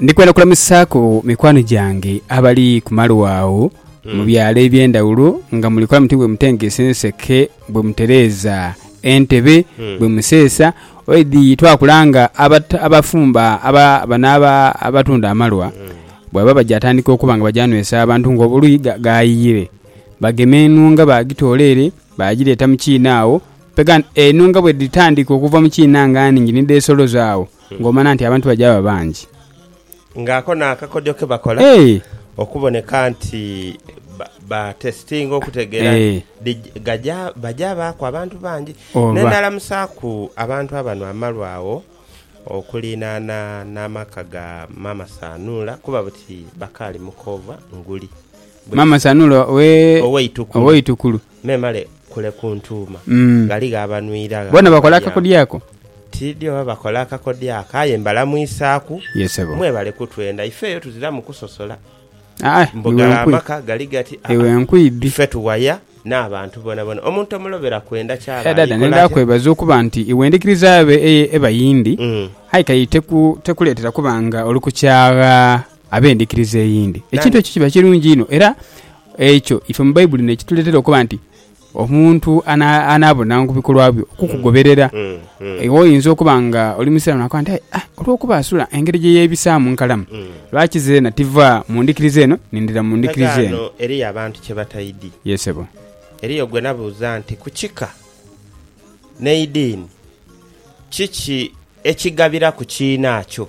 Ndi kwenda kulamusaaku mikwano gyange abali ku malwa agho mu byalo eby'endhawulo nga muli kola muti bwe mutengesa enseke, bwe mutereeza entebe, bwe museesa. Oidhi twakulanga abata- abafumba aba- bano aba- abatunda amalwa bwebaba baja atandika okuba nga baja nwesa abantu ng'obuluyi ga- gaayiyire. Bagema enhunga baagitoola ere baagireeta mu kiina agho Pegan eno nga bwe dhitandika okuva mu kiina nga nhingi ni dheesoloza agho, ng'omana nti abantu baja ba bangi. Nga ako n'akakodyo ke bakola Eeh! okuboneka nti ba- batesitinga okutegeera nti Eeh. dhij- gaja baja baaku abantu bangi. Oba. N'endhaalamusaaku abantu abano amalu agho okuliinana n'amaka ga Maama Sanuula kuba buti bakaali mu koova nguli. Bwe- Maama Sanuula owe- Ow'eitukulu. Ow'eitukulu. Memale kule kuntuuma. Ghaligho abanwira gha akakodyo ako? Tiidhi oba bakola akakodyo ako, aye mbalamwisaaku. Mwebale kutwenda. Ife eyo tuziramu kusosola. Mbu gale amaka gali gati, aa, ife tuwaya n'abantu bonabona. Omuntu omulobera kwenda ky'aba ali kola atya? Nedha, kwebaza okuba nti iwe endhikiriza yo eba yindi, aye kaye tekuleetera kuba nga oli ku kyagha. Ab'endhikiriza eyindi, ekintu ekyo kiba kirungi inho. Era ekyo ife mu Baibuli n'ekituleetera okuba nti omuntu anaabonanga ku bikolwa byo okukugoberera. Iwe oyinza okuba nga oli Musiraamu naakoba nti, aye olwokuba asula engeri gye yeebisaamu nkalamu, lwaki zeena tiva mu ndhikiriza eno nindhira mu ndhikiriza eno? Ghano eriyo abantu kye bataidhi. Yee sebo. Eriyo gwe nabuuza nti ku kika n'eidiini kiki ekigabiraku kiinakyo?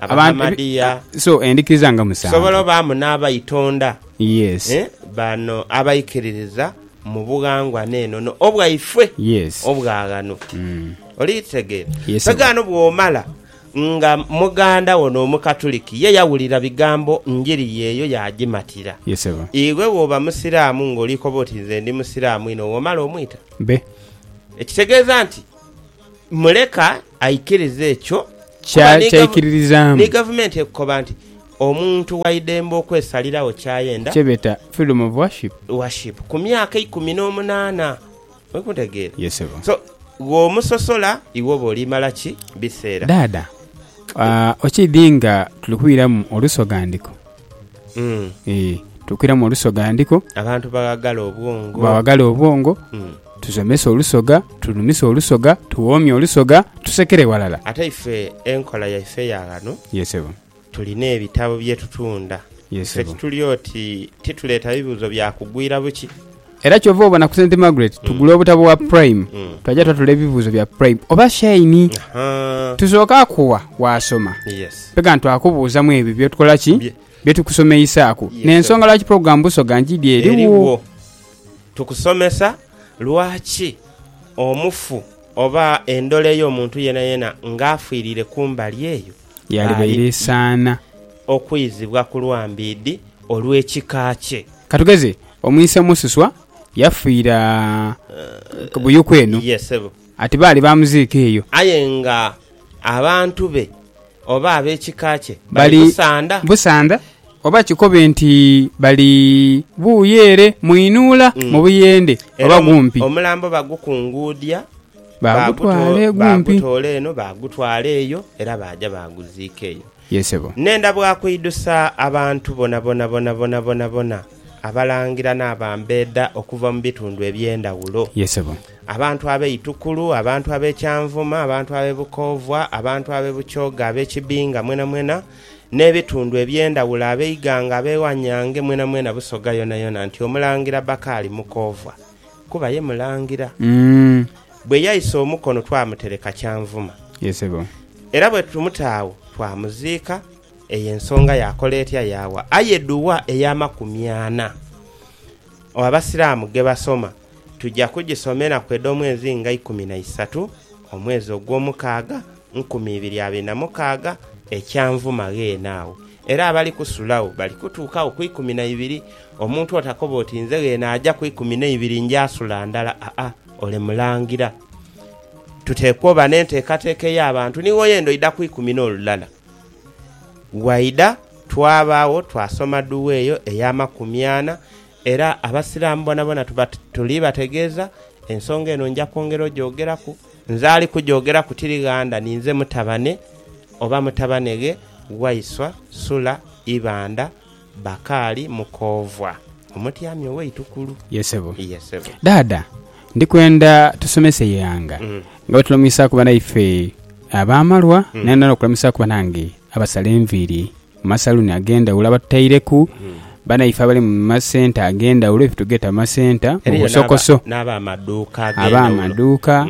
Abahamadiya. So endhikiriza nga musanvu. Tusobola obaamu n'abaitonda. Yes. Bano abaikiririza mu bughangwa n'enono obwaife. Yes. Obwa ghano. Oli kitegeera? Yes. Mpega ghano bw'omala nga muganda wo n'Omukatuliki ye yawulira bigambo njiri ye eyo yaagimatira. Yes ssebo. Iwe bw'oba Musiraamu ng'oli koba oti nze ndi Musiraamu inho, w'omala omwita? Be. Ekitegeeza nti muleka Aikiriza ekyo ky'aikiririzaamu. Ni gavumenti ekukoba nti omuntu waidembe okwesaliragho ky'ayenda. Kyebeeta freedom of worship. Worship ku myaka eikumi n'omunaana. Oli kuntegeera? Yes ssebo. So, bw'omusosola iwe oba olimala ki biseera? Dhaadha, okiidhi nga tuli kwiramu olusoghandiko? Eeh tukwiramu olusoga ndiko. Abantu baghagala obwongo. Baghagala obwongo. Tusomese olusoga, tunhumise olusoga, tuwoomye olusoga, tusekere ghalala. Ate ife enkola yaife ya ghano. Ye sebo. Tulina ebitabo bye tutunda. Ye sebo. Ife tituli oti tituleeta bibuuzo bya kugwira buki. Era kyova obona ku St Margaret tugula obutabo bwa Prime twaja twatula ebibuuzo bya Prime oba Shine Ahaa. tusooke akuwa waasoma Yes. mpega ntwakubuuzamu ebyo byotukola ki Bye- byetukusomeisaaku Yes, n'ensonga sir. lwaki pulogulaamu Busoga Njidhi eriwo Eriwo. Tukusomesa lwaki omufu oba endhola ey'omuntu yenayena ng'afiirire ku mbali eyo yaalibaire esaana. Okwizibwa ku lwa mbiidhi olw'ekika kye. Ka tugeze, omwise Mususwa yafiira Buyuku eno. Ye, sebo. Ati baali baamuziika eyo. Aye nga abantu be oba ab'ekika kye bali Busanda. Busanda, oba kikobe nti bali buuyo ere mu inuula mu buyende oba gumpi. Era omulambo bagukunguudhia. Baagutwala egumpi. Baagutoola eno baagutwala eyo, era baaja baaguziika eyo. Ye sebo. Nenda bwa kuidhusa abantu bonabona bonabona bonabona, Abalangira n'abambeeda okuva mu bitundu eby'endhawulo, Ye sebo. abantu ab'e Itukulu, abantu ab'e Kyanvuma, abantu ab'e Bukoovwa, abantu ab'e Bukyooga, ab'e Kibinga mwenamwena, n'ebitundu eby'endhawulo, ab'eighanga, ab'ewanyange mwenamwena Busoga yonayona nti Omulangira Bakari Mukoovwa. kuba ye Mulangira. Bwe yaisa omukono twamutereka Kyanvuma. Era bwe tumuta agho twamuziika. Eyo ensonga yakola etya yaawa aye duwa ey'amakumi ana Abasiraamu ge basoma? Tuja kugisomeraku edh'omwezi nga ikumi na isatu omwezi ogw'omukaaga nkumi ibiri abiri na mukaaga ekyanvuma gheene agho, era abali kusulagho bali kutuukagho ku ikumi na ibiri. Omuntu otakoba oti, Nze gheene aja ku ikumi n'eibiri nja sula ndala, aa, ole mulangira. Tuteekwa oba n'enteekateeka ey'abantu ni woyenda oidha ku ikumi n'olulala. Waidha twabaagho twasoma dua eyo ey'amakumi ana, Era Abasiraamu bonabona tuba tuli bategeeza, ensonga eno nja kwongera ogyogeraku. Nze ali kugyogeraku tiri ghanda, ninze mutabane oba mutabaneghe Waiswa Sula Ibanda Bakaali Mukoovwa, omutyami ow'eitukulu. Ye sebo. Ye sebo. Dhaadha, ndi kwenda tusomese Ighanga nga bwe tulamuisaaku banaife ab'amalwa naye n'okulamwisaaku banange abasala enviiri Mu masaluuni ag'endhaghulo abatutaireku banaife abali mu masenta ag'endhaghulo efe tugeeta amasenta, mu busokoso. Aba amaduuka,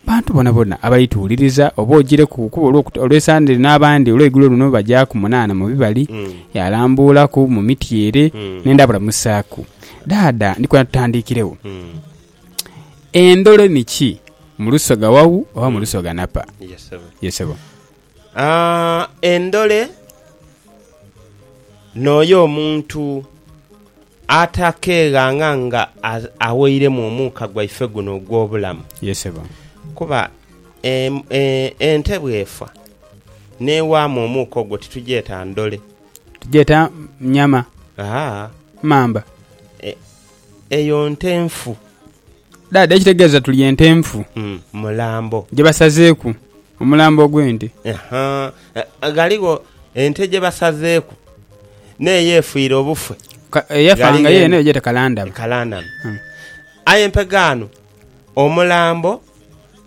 bantu bonabona abali tuwuliriza oba ogireku kuba olw'esande lino abandi olweigulo luno bajaaku munaana mu bibali, yalambuulaku mu miti ere nenda balamusaaku. Dhaadha ndi kwenda tutandiikiregho. Endholo ni ki? Mu lusoga wau oba mu lusoga napa? Ye sebo. Endhole n'oyo omuntu atakeeghanga nga aweiremu omuuka gwaife guno ogw'obulamu. Kuba ente bw'efa n'ewaamu omuuka ogwo titugyeta ndhole. Tugyeta nyama, mamba. Eyo nte nfu. Dhaadha, ekitegeeza tuli ente nfu. Mulambo. Gye basazeeku omulambo ogw'ente. Haa. Ghaligho ente gye basazeeku n'eyo efiire obufe. Eyafa nga yeene eyo gyete kalandhame. Kalandhame. Aye mpegho ghano omulambo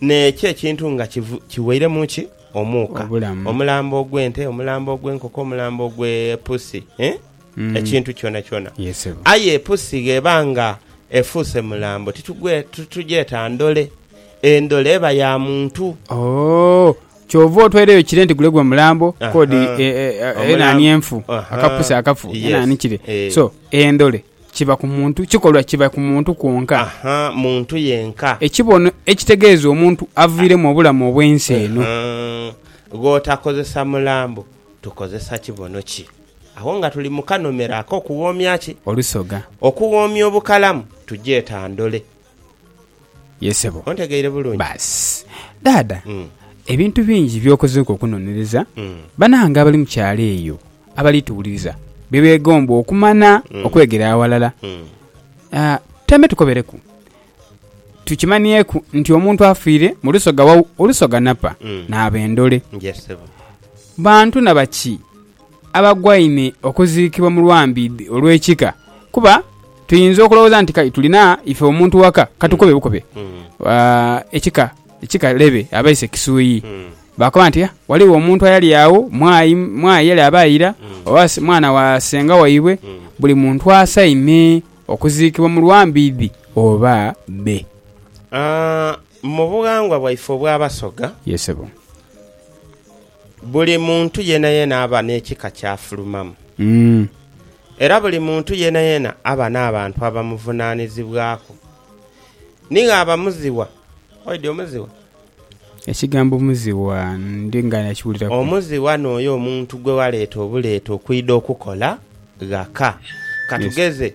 n'ekyo ekintu nga kiwairemu ki? Omuuka. Obulamu. Omulambo ogw'ente, omulambo ogw'enkoko, omulambo ogw'epusi. ekintu kyonakyona. Aye epusi gh'eba nga efuuse mulambo titugyeta ndole. Endole eba ya muntu. Oh, kyova otwaire eyo kire nti gule gwe mulambo kodi enaani enfu, akapusi akafu enaani kire. So, endole kiba ku muntu, kikolwa kiba ku muntu kwonka. Aha, muntu yenka. Ekibono ekitegeeza omuntu aviiremu obulamu obw'ensi eno. Gh'otakozesa mulambo, tukozesa kibono ki? Agho nga tuli mu kanomera ak'okughoomya ki? Olusoga. Okughoomya obukalamu tugyeta ndole. Ye sebo. Ontegeire bulungi? Baasi. Dhaadha, ebintu bingi by'okozeeku okunonereza, banange abali mu kyalo eyo abali tuwuliriza bye beegomba okumanya okwegera aghalala. Tutaime tukobereku. Tukimanieku nti omuntu afiire mu lusoga wa Olusoga napa, naaba endole. Bantu na baki? abagwaine okuziikibwa mu lwambiidhi olw'ekika. Kuba tuinza okulowooza nti kai tulina ife omuntu waka, ka tukobe bukobe ekika, ekika lebe abaise Kisuuii, baakoba nti, ah, ghaligho omuntu ayali agho, mwai, mwai yali aba aira, oba mwana wa senga waibwe. Buli muntu asaime okuziikibwa mu lwambiidhi oba bbe. Aa, mu bughangwa bwaife obw'Abasoga. Ye ssebo. Buli muntu yeenayeena aba n'ekika ky'afulumamu. Era buli muntu yeenayeena aba n'abantu abamuvunaanizibwaku. Nigho abamuzigha. Oidhi omuzigha? Ekigambo muzigha ndi nga nakiwuliraku. Omuzigha n'oyo omuntu gwe waleeta obuleeta okwidha okukola ghaka. Ka tugeze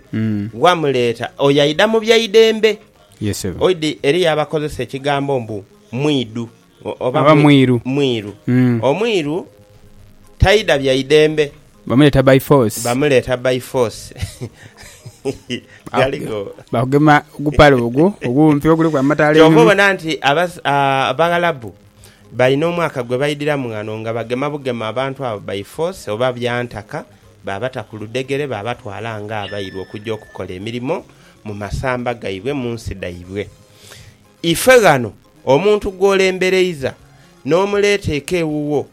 wamuleeta oyo aidha mu byaidembe. Oidhi eriyo abakozesa ekigambo mbu mwidhu. Oba mwiru. mwiru. Omwiru taidha bya idembe. Bamuleeta by force. Bamuleeta by force. Ghaligho. Baakugema ogupale ogwo ogumpi oguliku amataala einhuma. Kyova obona nti Abaghalabu balina omwaka gwe baidhiramu ghano nga bagema bugema abantu abo by force oba bya ntaka, baabata ku ludhegere baabatwala ng'abairu okugya okukola emirimo mu masamba gaibwe mu nsi dhaibwe. Ife ghano Omuntu gw'olembereiza n'omuleeta eka ewuwo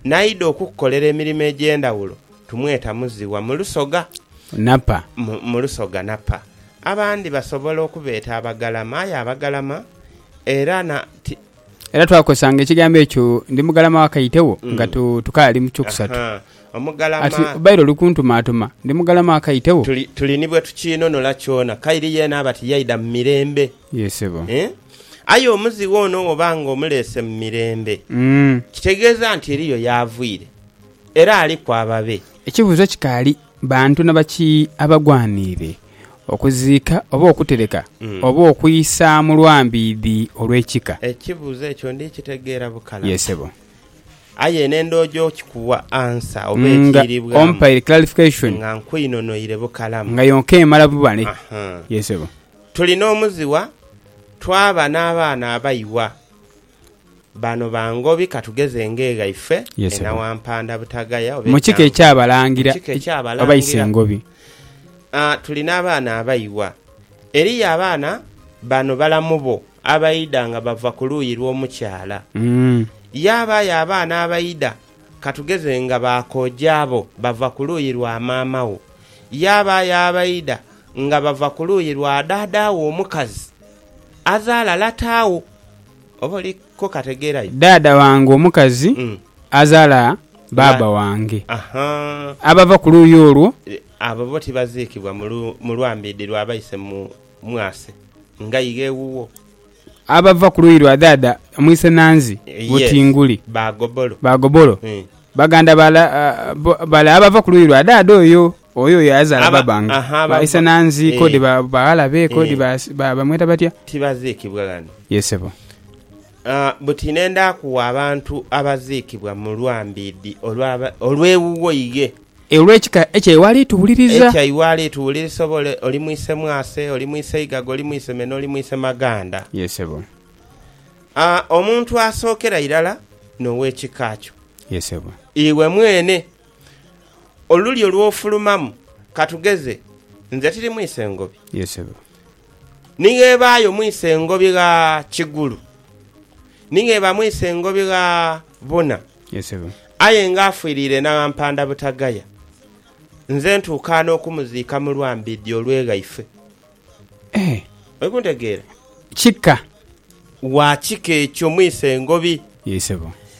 n'aidha okukukolera emirimo egy'endhawulo tumweta muziwa mu lusoga Napa. mu lusoga Napa. Abandi basobola okubeeta abagalama aye abagalama era na ti. Era twakozesanga ekigambo ekyo ndi mugalama wa Kaitewo nga tukaali mu kyokusatu. Ahaa, omugalama. Ati obaire oli kuntumaatuma ndi mugalama wa Kaitewo. Tuli, tuli ni bwe tukiinunula kyona. Kairi yeena aba tiyaidha mu mirembe. Yee sebo. Eeh aye omuzighe ono woba nga omuleese mu mirembe kitegeeza nti eriyo y'aviire era aliku ababe. Ekibuuzo kikaali, bantu na baki abagwaniire okuziika oba okutereka oba okwisa mu lwambiidhi olw'ekika? Ekibuuzo ekyo ndi kitegeera bukalamu. Yee sebo. Aye eno endhoojo okikuwa ansa oba Nga ekiiribwamu ompaire clarification. nga nkwinonoire bukalamu. Nga yonka emala buba ni. Aha. Yee sebo. Tuli n'omuzigha, twaba n'abaana abaighwa. Bano ba Ngobi ka tugeze Engeegha ife e Nawampanda Butagaya oba e Kyango. Mu kika eky'Abalangira oba Isengobi. Tuli n'abaana abaighwa. Eriyo abaana bano balamu bo abaidha nga bava ku luuyi lw'omukyala. Yaabaayo abaana abaidha. Ka tugeze nga ba kooja abo bava ku luuyi lwa maama wo, yaabaayo abaidha nga bava ku luuyi lwa dhaadha wo omukazi, azaala lata wo. Oba oli kukategeera yo? Dhaadha wange omukazi azaala baaba wange. Abava ku luuyi olwo. Abo bo tibaziikibwa mu lwambiidhi lwa baise mu mwase nga ighe ewuwo? Abava ku luuyi lwa dhaadha Mwisenanzi Butinguli ba Gobolo, baganda bale abava ku luuyi lwa dhaadha oyo oyo yazaala babange, ba Isenanzi kodi ba baghalabe kodi bamweta batya? Tibaziikibwa ghano? Ye sebo. Buti ne ndaaku abantu abaziikibwa mu lwambiidhi olw'ewuwo ighe. E olw'ekika ekya iwe ali tuwuliriza. Ekya iwe ali tuwulirisa oba ole oli mwise mwase, oli mwise igaga, oli mwise meno, oli mwise maganda. Ye sebo. A omuntu asookera irala n'ow'ekika kyo. Ye sebo. Iwe mwene. Olulyo lw'ofulumamu, ka tugeze, nze tiri mwise ngobi. Ye sebo. Ni gh'ebaayo mwise ngobi gha kigulu, ni gh'eba mwise ngobi gha buna. Aye ng'afiiriire n'abampanda butagaya, nze ntuuka n'okumuziika mu lwambidhi olw'eghaife. Oli kuntegeera? Kika. Wa kika ekyo mwise ngobi.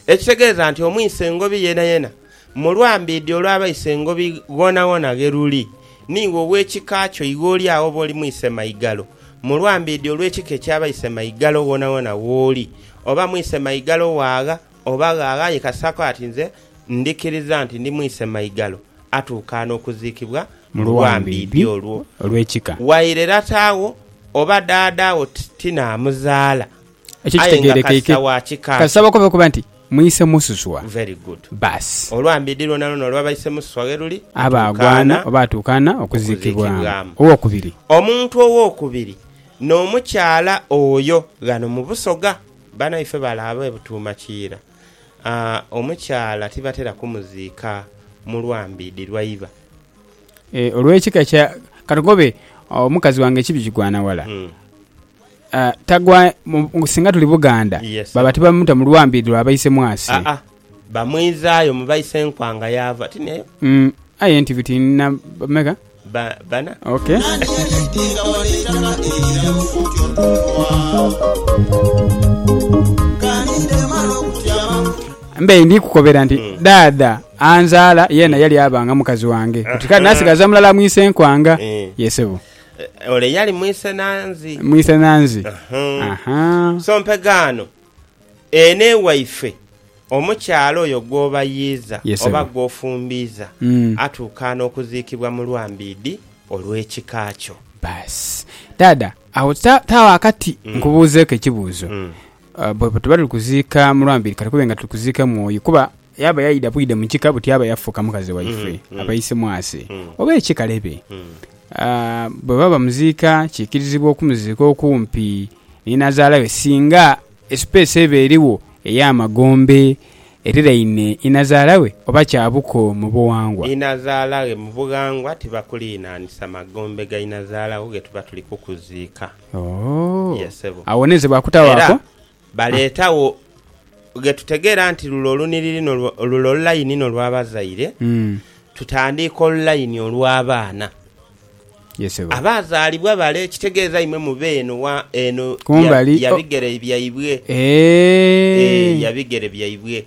Ekitegeeza nti omwise ngobi yenayena mu lwambidhi olw'abaise ngobi ghoonaghona ghe luli, niiwe ow'ekika kyo iwe oli agho oba oli mwise maigalo mu lwambidhi olw'ekika eky'abaise maigalo ghoonaghona gh'oli, oba mwise maigalo waagha Oba ghagha yekasaaku ati nze ndhikiriza nti ndi mwise maigalo, atuukaana okuziikibwa mu luwambiidhi olwo. Waire lata wo oba dhaadha wo ti naamuzaala, aye nga kasa wa kika ki? Mwise mususwa. Baasi. Oluwambiidhi lwonalwona olwa baise mususwa ghe luli, atuukaana okuziikibwamu. Owokubiri. Omuntu owokubiri n'omukyala oyo ghano mu Busoga. Banaife balaaba e Butuuma Kiira, omukyala tibatera kumuziika mu Lwambiidhi lwaiba. E olw'ekika kya, katukobe omukazi wange ekibi kigwana wala, tagwa mu, singa tuli Buganda baba tibamuta mu Lwambiidhi lwa Baisemwasi. Bamwizaayo mu baisenkwanga yaava ati n'eyo. Aye nti biti na bameka? Ba, bana. Ok. Mbe ndi kukobera nti daadha anzaala yeena yali aba nga mukazi wange. Kati kale nasigaza mulala mu isenkwanga. Eh. Ye sebo. Eh, Ole yali mwisenanzi. Mwisenanzi. Aha. Aha. So mpegaano Ene waife omukyala oyo gw'obayiiza oba gw'ofumbiiza atuukaana okuziikibwa mu lwambiidhi olw'ekika kyo. Baasi. Dhaadha, agho taagho akati nkubuuzeeku ekibuuzo. Bwe tuba tuli kuziika mu lwambiidhi, ka tukube nga tuli kuziika mwoyo kuba Yaaba yaidha bwidha mu kika buti yaaba yafuuka mukazi waife, abaise mwase, oba ekikalebe. Bwebaba bamuziika, kiikirizibwa okumuziika okumpi ni nazaala we singa esipeesi eba erigho ey'amagombe eriraine inazaala we oba kya buko mu bughangwa. Inazaala ghe mu bughangwa tibakuliinhanisa magombe ga inazaala wo ghe tuba tuli kukuziika. Yee sebo. Awo n'enze bwakutawaako. Baleetagho ghe tutegeera nti lule olunhiriri lule olulaini n'olwabazaire, tutandiike olulaini olw'abaana. Abaazaalibwa bale, ekitegeeza imwe mube eno wa eno ya bigere byaibwe. Ee, ya bigere byaibwe.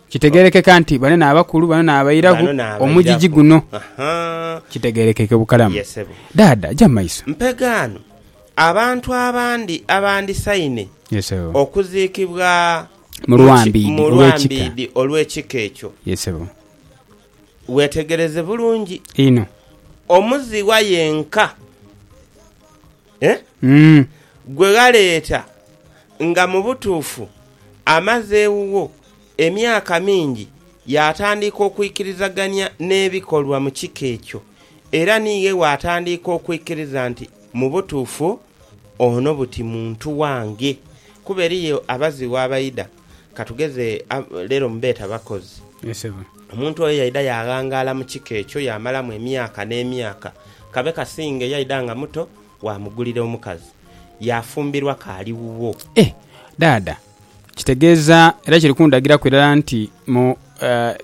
Kitegeerekeka nti bano n'abakulu, bano n'abairaku omugigi guno. Kitegeerekeke bukalamu. Dhaadha, ja mu maiso. Mpegaano. Abantu abandi abandisaine okuziikibwa mu lwambiidhi olw'ekika ekyo, weetegereze bulungi, omuziwa yenka gwe ghaleeta nga mu butuufu amaze ewuwo. Emyaka mingi yaatandiika okwikirizagania n'ebikolwa mu kika ekyo, era ni ghe waatandiika okwikiriza nti mu butuufu ono buti muntu wange. Kuba eriyo abazighu abaidha, ka tugeze leero mubeeta bakozi. Omuntu oyo yaidha yaaghangaala mu kika ekyo yaamalamu emyaka n'emyaka. Kabe kasinge yaidha nga muto waamugulira omukazi, yaafumbirwa k'ali wuwo. Dhaadha Kitegeeza era kiri kundagiraku irala nti mu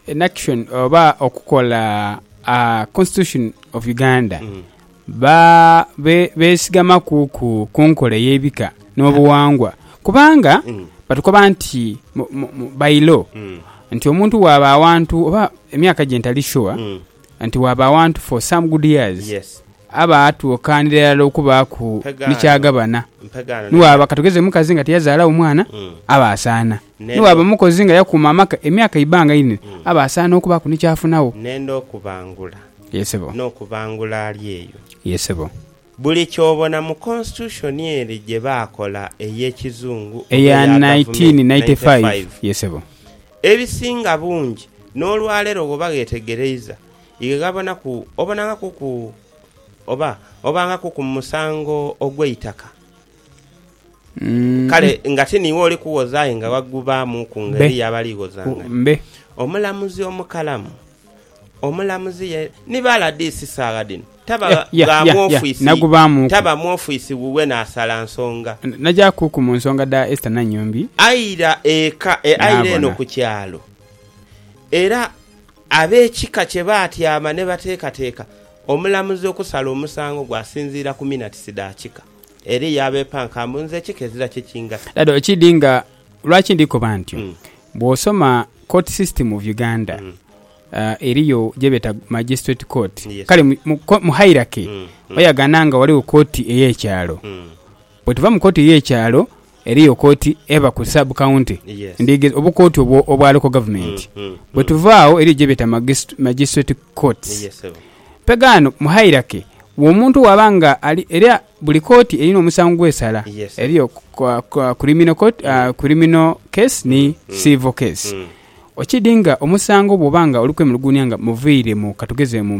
enaction oba okukola constitution of Uganda besigamaku ku nkola eyebika nobuwangwa kubanga batukoba nti by law nti omuntu bwaba awantu oba emyaka gye ntali sure nti waaba awantu for some good years aba atuukaanira irala okubaaku ni ky'agabana. Ni waaba katugeze mukazi nga tiyazaalawo mwana, aba asaana. Ni waaba mukozi nga yakuuma amaka emyaka eibanga inene, aba asaana okubaaku ni ky'afunagho. N'okubangula ali eyo Buli ky'obona mu Constitution ere gye baakola ey'ekizungu oba Eya eya Gavumenti, 1995, ye sebo. ebisinga bungi n'olwaleero bw'oba gheetegereiza ye ghabonaku obonangaku ku oba obangaku ku musango ogw'eitaka. Kale nga ti niiwe oli kuwoza aye nga waggubaamuuku Mbe. ng'eriyo abalighozangania. Mbe. Omulamuzi omukalamu. Omulamuzi ye ni bala disi saagha dhino taba gha mwofisi taba mwofisi wuwe naasala nsonga. Nagyakuku mu nsonga dha Esther Nanyombi. Aira eka aira eno ku kyalo era ab'ekika kye baatyama ne bateekateeka omulamuzi okusala omusango gwe asinziira ku minatisi dha kika. Eriyo abeepanka mbu nze ekika ezira kye kingasa. Dada okiidhi nga Lwaki ndi koba ntyo? Bwosoma court system of Uganda eriyo gyebeta magistrate court kale mu hierarchy oyagana nga waliwo court eye kyalo bwetuva mu court eye kyalo eriyo court eba ku sub county ndigeza obu court obwo obwa local government bwetuva agho eriyo gyebeta magistrate courts pega ghano mu hierarchy omuntu waba nga ali era Buli kooti erina omusango gw'esala. Eriyo Criminal Court, Criminal Case ni Civil Case. Okidi nga omusango bwoba nga oli kwemuluguunia nga muviire mu, katugeze mu.